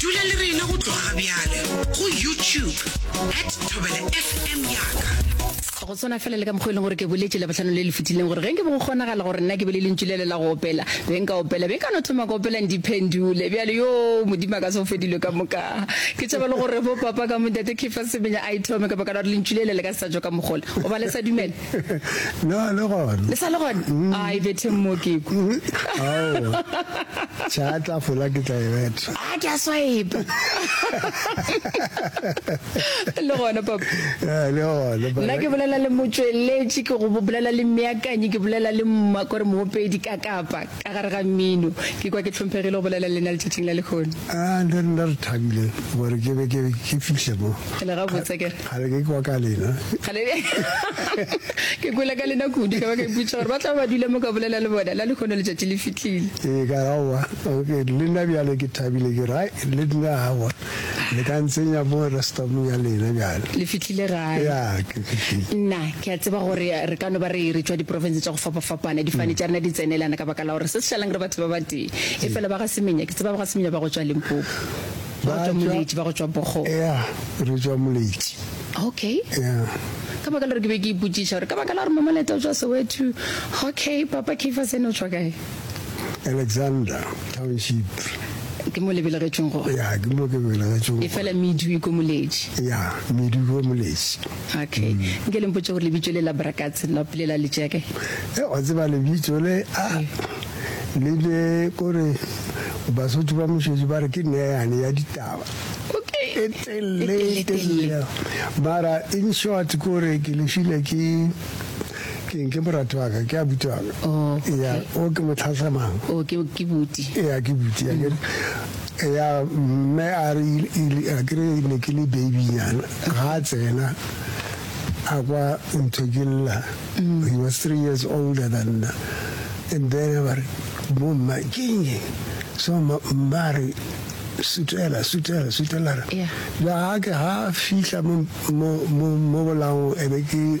dula le rena go tloga bjale go youtube at thobela fm yaka go tshwana fela le ka mokgwa e leng gore ke boletse le botlhano le le fetileng gore ge nke bo go kgonagala gore nna ke be le lentšu le le la go opela be nka opela be nka no thoma ka opelang diphendule bjale yo modimo a ka se go fedilwe ka moka ke tšhaba le gore bo papa ka modate kefa semenya a ithome ka baka la gore lentšu le le le ka se sa jo ka mogola o ba le sa dumela na le gona le sa le gona mm. a e betheng mo ke ku mm. aowa tša tla fola ke tla e betha a ke a swaepa le gona papa eh, le gona nna ke bolela le motsweletši ke go bolela le meakanyi ke bolela le mma kore moopedi ka kapa Ka gare ga mmino, ke kwa ke hlomphegile go bolela le lena letšatšing la lehono. A le rena re thabile gore ke be ke ke fihle mo. E le gabotse ke re. Kgale ke kwa ka lena. Kgale ke kwele ka lena kudu, ka ba ka ipotšiša gore ba tla be ba dule mo ka bolela le bona. La lehono letšatši le fihlile. Ee, ka re, Aowa, le nna bjale ke thabile, ke re, Ai, le nna, aowa. Le ka ntsenya mo restaurant ya lena bjale. Le fihlile gae? Ya, ke fihlile. Nna, ke a tseba gore re ka no ba re re tšwa diprofense tša go fapafapana, difane tša rena di tsenelana ka baka la gore se se šalang re batho ba batee. Efela ba ga Semenya, ke tseba ba ga Semenya ba go tšwa Limpopo. Ba go tšwa Moletši, ba go tšwa Bogo. Ya, re tšwa Moletši. Okay. Ya. Ka baka la gore ke be ke ipotšiša gore ka baka la gore Mamaleta o tšwa Soweto. Okay, Papa Keifas ene o tšwa kae? Alexander Township. Ke mo le belegetšweng go? Ya, ke mo ke belegetšweng go. E fela Medu e ko Moletši? Ya, Medu e ko Moletši. Okay. Mm. Nke le mpotše gore lebitšo le la Brakats la pele la letšeke? E, wa tseba lebitšo le, a, ah, le be kore Basotho ba mošwetši ba re ke neyane ya ditaba. Okay. E telle, e telle. Mara in short kore ke lefile ke Ke eng? Ke morati wa ka, ke abuti wa ka. Oh, okay. Ea, o ke motlhahla mang? Oh, ke, ke buti. Ea, ke buti, a kere. Mm. Ea, mme a re, a kere ne ke le babynyana, ga a tsena a kwa ntho ke lla. Mm. He was three years older than nna. And then ba re, bo mma, ke eng e? So mma re, sutela, sutela, sutela. Ea. Jwa ga ke ga fihla mo, mo, mo, mo bolango, ebe ke.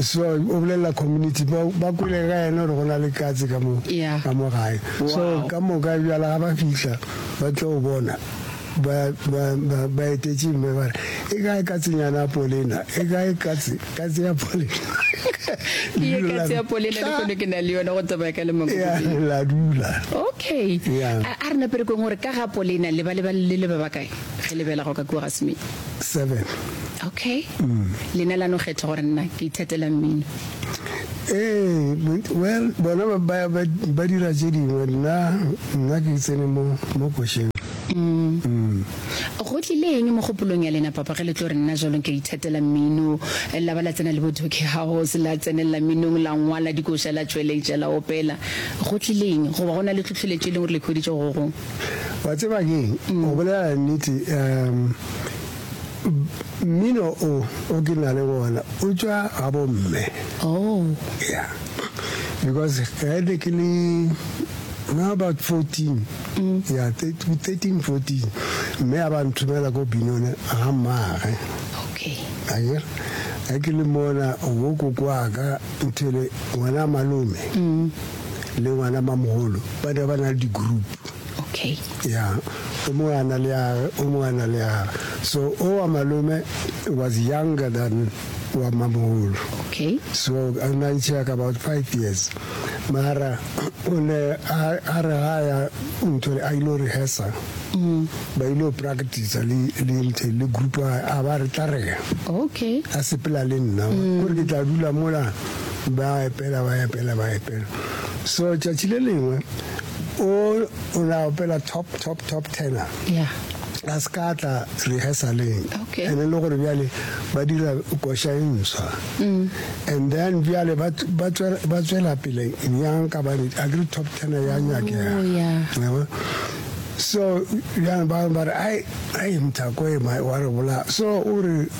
So o bolelela community ba ba kwele ga yena gore go na le katse ka mo Yeah. ka mo gae. So Wow. ka moka bjala ga ba fihla ba tlo o bona ba ba ba ba etetše mme ba re e kae katsenyana ya polena e kae katse katse ya polena. ke ye ka tsea polena le kone ke na le yone go tsamaya ka lemoko Ya, bobedi. la dula. okay Yeah. a a re naperekong gore ka ga polena le ba le ba le le ba bakae ge le bela go ka kua ga semedi seven. Okay. Lena la no kgetha gore nna ke ithatela mmino. Ee, well, bona ba, ba, ba, ba dira tše dingwe, nna, nna ke tsene mo, mo košeng. Go tlile eng mogopolong ya lena, Papa, ge le tlo re nna jalo ke ithatela mmino, la ba la tsena le bo Toki House, la tsenelela mminong, la ngwala dikoša, la tšweletša, la opela? Go tlile eng? Goba go na le tlhohleletšo e leng gore le e hweditše go go gongwe? Wa tseba keng, go bolela nnete, um, mmino o, o ke na le wona, o tšwa ga bomme. Oh. Yeah. Because ge ne ke le no about 14 mm. yeah 13 14 mme a ba nthomela ko binone ga mmaage okay ayer a ke le mona wo kokoaka nthele ngwana malome mm. le ngwana mamogolo ba ne ba na le di-group okay ya o mongwe a na le yage o mongwe a na le yage so o wa malome was younger than wa mamogolo okay so a na ntšhea ka about five years mara o ne a re ga ya ntho a ile rehearsa mm. ba ile practice le le nthe le group a ba re tla rega okay a sepela le nna mm. gore ke tla dula mola Ba epela, ba epela, ba epela. So tšatši le lengwe o o na opela top top top tenor. Yeah. a se ka tla rehearsaleng Okay. and le gore bjale ba dira koša e ntswa Mm. and then bjale ba ba tswela- ba tswela pele bjang ka bane a kere top tenor ya nyakega Oh, yeah. Yabo? so bjang ba ba re ai ai mthako e ma- wa re bola so o re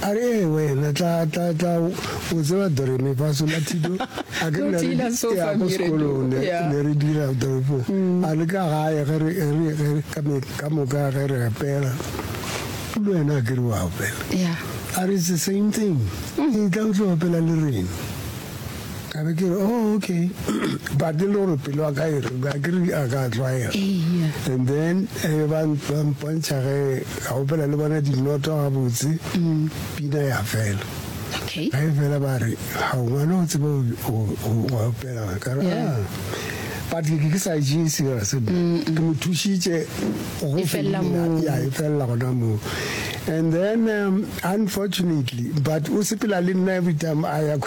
A re, Ee, wena, tla, tla, tla, o tseba Doremi fa sola Tito, a ke ne re, ya, ko sekolong, ne, ne re dira toropong. A le ka gae ge re, ge re, ge re, ka, ka moka ge re opela, le wena a ke re wa opela. A re, It's the same thing. Etla o tlo opela le rena. ka be ke re oh okay but e le gore pelo ya ka e re a ke re a ka tlwaela Eya. and then e be ba ba mpontšha ge ka opela le bona dinoto gabotse pina ya fela Okay. ga e fela ba re ga o ngwana o tseba o- o- o- wa opela ka re Yeah. "Ah." but ke ke sa e jee serious ke mo thušitše go E felela fedile. moo. Ya, e felela gona moo and then um, unfortunately but o sepela le nna every time a ya ko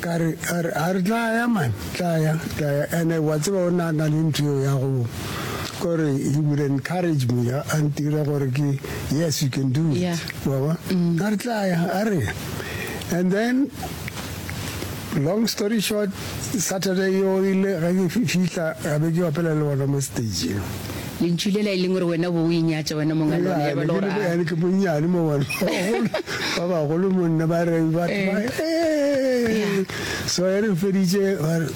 Ka re, a re, a re tla ya man, tla ya, tla ya. Ene wa tseba o ne a na le ntho eo ya go, ko re, he would encourage me, a, a ntira gore ke, yes, you can do it. Yeah. Wa ba? A re tla ya, a re ya. And then, long story short, Saturday yeo ile ge ke fi, fihla, ka be ke opela le bona mo stage-ing. Lentšu lela e leng gore wena o be o inyatša wena monga lona, ya ba e le gore a. Ene ke monnyane mo bona, ba bagolo, ba bagolo mo nna, ba re batho ba, ee. So e re feditše, ba re,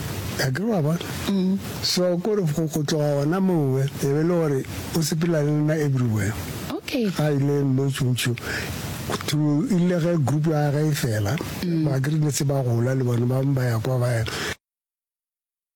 akere wa bona. Mm. So ko re go tloga gona moo, e be e le gore o sepela le nna everywhere. Okay. Ga ile mo Tšuntšhu, through ile ge group ya ge e fela, mm. ba ke re ne se ba gola le bona ba ba ya kwa ba ya.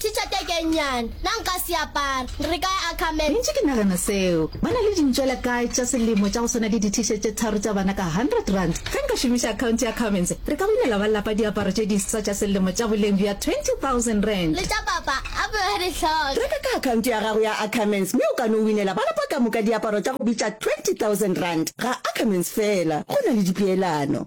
Teacher teke e nnyane, na nka se apara? Re ka ya Ackerman. Ntše ke nagana seo. Ba na le dintšwela kae tša selemo tša go swana le di-T-shirt tše tharo tša bana ka hundred rand? Ge nka šomiša account ya Ackermans, re ka winela ba lapa diaparo tše diswa tša selemo tša boleng bja twenty thousand rand. Le tša papa a be a di hloka. Reka ka account ya gago ya Ackermans mme o ka no winela ba lapa ka moka diaparo tša go bitša twenty thousand rand. Ga Ackermans feela, go na le dipeelano.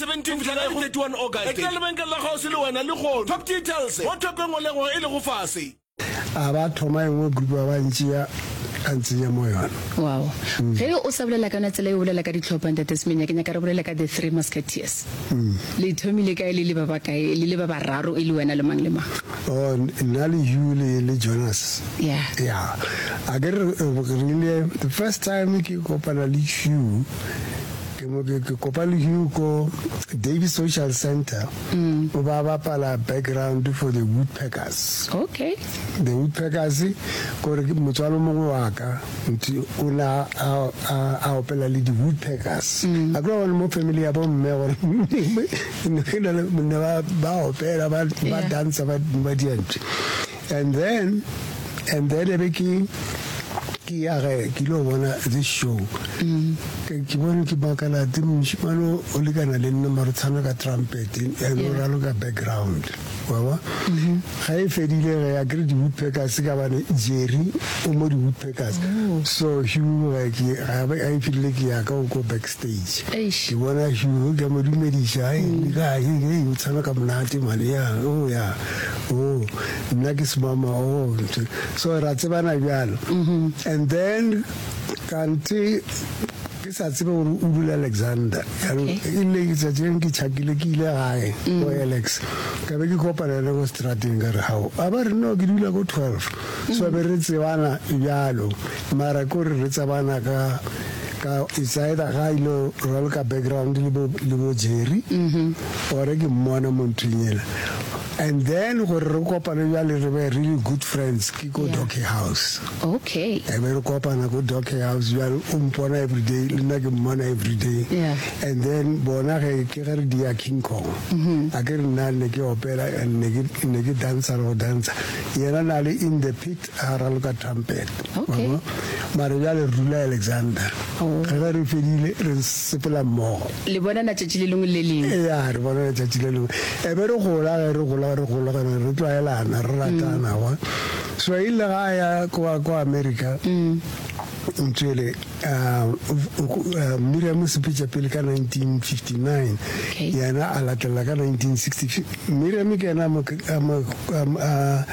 17 go fihla ka go 31 August. Etela lebenkele la kgauswi le wena lehono. Top Details, mo thoko e ngolego e lego fase. A ba thoma engwe group a ba ntšea a ntsenya mo yona. Wow. Ge o sa bolela ka yona tsela e o bolela ka ditlhopha, Ntate Semenya, ke nyaka re bolele ka The Three Musketeers. Le ithomile kae le le ba bakae, le le ba bararo e le wena le mang le mang? Oh, nna le Hugh le, le Jonas. Yeah. Yeah. A ke re, re rile, the first time ke kopana le Hugh, Ke mo ke ke kopa le Hugo Davis Social Centre o ba bapala background for the Woodpeckers. Okay. The Woodpeckers kore ke motswalo mongwe wa ka nti o na a a a opela le di Woodpeckers. A kula one mo family ya bo mme gore ne ke na le ne ba ba opela ba ba Yeah. dansa ba ba dientse. And then, and then ebe ke ke ya ge ke ile go bona this show mm. ke bone ke makala te mošimane o lekana le nna mare tshwana ka trumpet and o ralo ka background waba mm-hmm. ga e fedile ge ya kry di-woodpackers ka bane jerry o mo di-woodpackers oh. so huge ga e fedile ke yaka o ko back Eish. Ke bona šuru, ke a mo dumediša, hai, le kae, hei, o tshwana ka monate mane, ya, oh, ya, oh, nna ke semama, oh, ntho, so ra tsebana bjalo, and then kante ke sa tsebe gore o dula Alexander, jaanong e le letsatsi leng ke tšhakile ke ile gae go Alex, ka be ke kopana le ko strateng ka re hao, a ba re no ke dula ko twelve, so be re tsebana bjalo, mara kore re tsebana ka. ka it's either ga ilo raloka background le bo le bo Jerry ore ke mmona mo nthweng ela and then gore re kopane jwale re be really good friends ke ko Yeah. Docky House okay e be re kopana ko Docky House jwale o mpona everyday le nna ke mmona everyday Yeah. and then bona ge ke ge re dia King Kong a ke re nna ne ke opela and ne ke ne ke dansa le go dansa yena na le in the pit A raloka trumpet. Okay. Wa bona? Mare bjale re dula Alexander. Oh. Re ge re fedile re sepela mmogo. Le bonana tšatši le lengwe le lengwe. Ea re bonana tšatši le lengwe. E be re gola ge re gola re gola ge re tlwaelana re ratana wa. So e ile ga a ya kwa kwa America. Ntšwele, a Miriam Sepetša pele ka 1959, yena a latelela ka 1960. Miriam ke yena a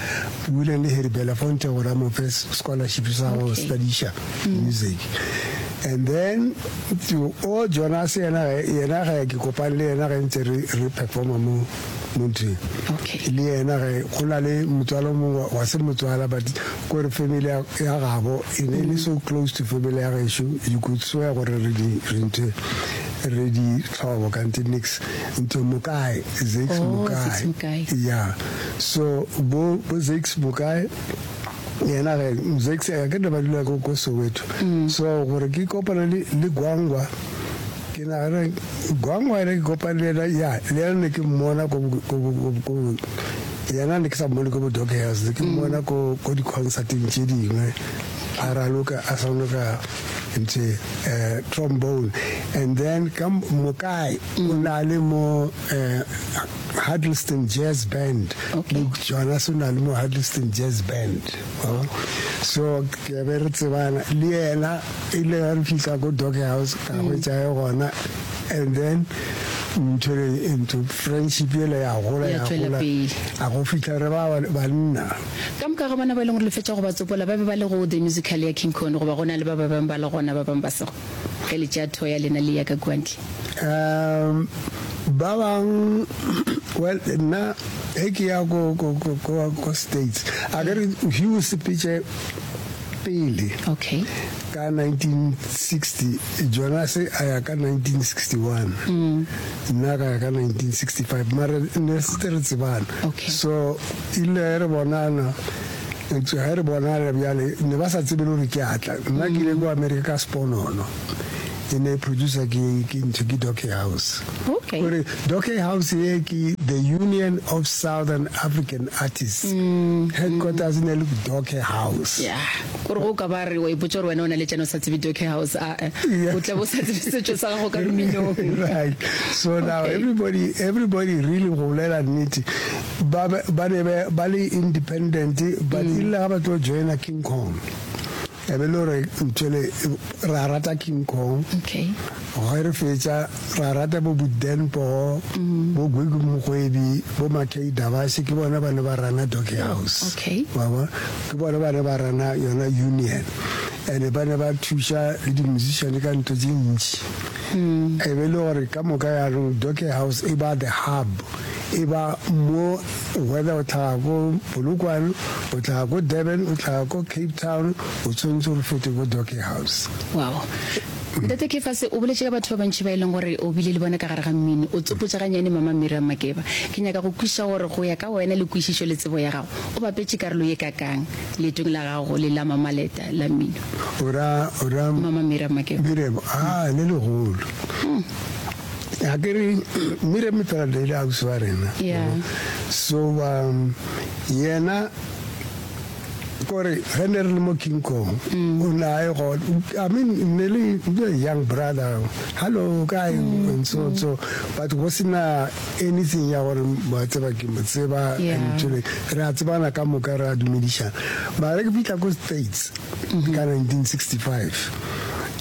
buileng le Harry Belafonte gore a mo fe scholarship sa go studiša music. And then o Jonas yena, yena ga ke kopane le yena ge ntse re performa mo. Motho okay. Le yena ge go na le motswalo mongwe wa se motswala but ko re family ya gabo e ne le so close to family ya gešo you could swear gore re di re ntse re di tlhobo kante nix ntse mokae zix oh, mokae yeah so bo bo zix mokae yena ge zix a ke ne ba dula ko soweto mm. so gore ke kopana le gwangwa Ke nagana bjang wena ke kopane le yena ya le yena ne ke mmona ko yena ne ke sa mmone ko bo dog hills ne ke mmona ko ko di-concerteng tše dingwe a raloka a sonoka ntše um trombone and then ka mokae o na le mo um huddleston jazz band le jona se na le mo huddleston jazz band so ke be re tsebana le yena e ile ga re fitlha ko dog house ka mm. hwetsae gona and then ntshwere into friendship ele ya gola ya gola a go fitlha re ba banna ka moka ga bona ba e leng gore le fetsa go ba tsopola ba be ba le go the musical ya king con goba go na le ba ba bangwe ba le gona ba bangwe ba sego Ge le tšea thoya lena le ya ka kua ntle. Um, ba bang, well, nna ge ke ya ko, ko, ko, ko, ko States, a ke re hwi o sepetše pele Okay. ka 1960, Jonase a ya ka 1961, nna ka ya ka 1965, mara ne re setse re tsebana. Okay. So ile re bonana Eupša ge re bonala bjale, ne ba sa tsebe le gore ke a tla. Nna ke ile ko Amerika ka sponono, e ne e producer ke ke ntho ke Dockey House. Okay. Gore Dockey House ye ke the Union of Southern African Artists. Headquarters e ne e le ko Dockey House. ya gore go ka ba re wa ipotsa gore wena o na le tšana o sa tsebe dockey house a Yeah. o tla bo sa tsebe setšo sa gago ka mminong Right. So now Okay. everybody everybody really go bolela nnete ba be ba ne be ba le independent but e rile ga ba tlo joina King Kong e be le gore ntshele ra rata King Kong Okay. ge re fetša ra rata bo Buden Pogo bo Gwigwi Mogwebi bo Makei Davashe ke bona ba ne ba rana Doggy House Okay. wa bona ke bona ba ne ba rana yona union and ba ne ba thuša le di-musician ka ntho tše ntši e be le gore ka moka yaanong Doggy House e ba the hub e ba mo whether o tlhaga ko Polokwane, o tlhaga ko Durban, o tlhaga ko Cape Town, o tshwanetse re fete ko Docky House. Wow. Ntate Kefase, o boletše ka batho ba bantši ba e leng gore o bile le bona ka gare ga mmino. O tsopotša ganyane Mama Miriam Makeba. Ke nyaka go kwišiša gore go ya ka wena le kwišišo le tsebo ya gago, o bapetše karolo ye kakang leetong la gago le la Mama Leta la mmino? O ra, o ra? Mama Miriam Makeba. Miriam, aa, le legolo. Hmm. ga ke re mmire metrada ile ausi wa rena so ba yena kore ge ne re le mo king kong mm. o ne a e go i mean ne le young brother hallo kae mm, and so mm. so but go sena anything ya gore ba tseba ke mo tseba and jole re a tsebana ka moka re a dumedišana mara ke fitlha ko states ka 1965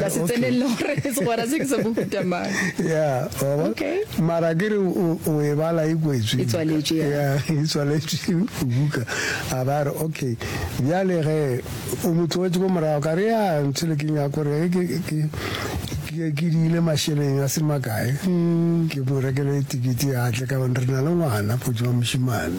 ka se tsenelele gore segwera se ke sa mohuta mang ya mara ke re o e bala e kwetswe e tswaletše buka a ba re okay bjale ge o mo tloetse ko morago ka re ya ntshele ke nyaka gore ke diile mašeleng a se makae mm. ke mo rekele tikete ya tle ka re na le ngwana potso wa mošimane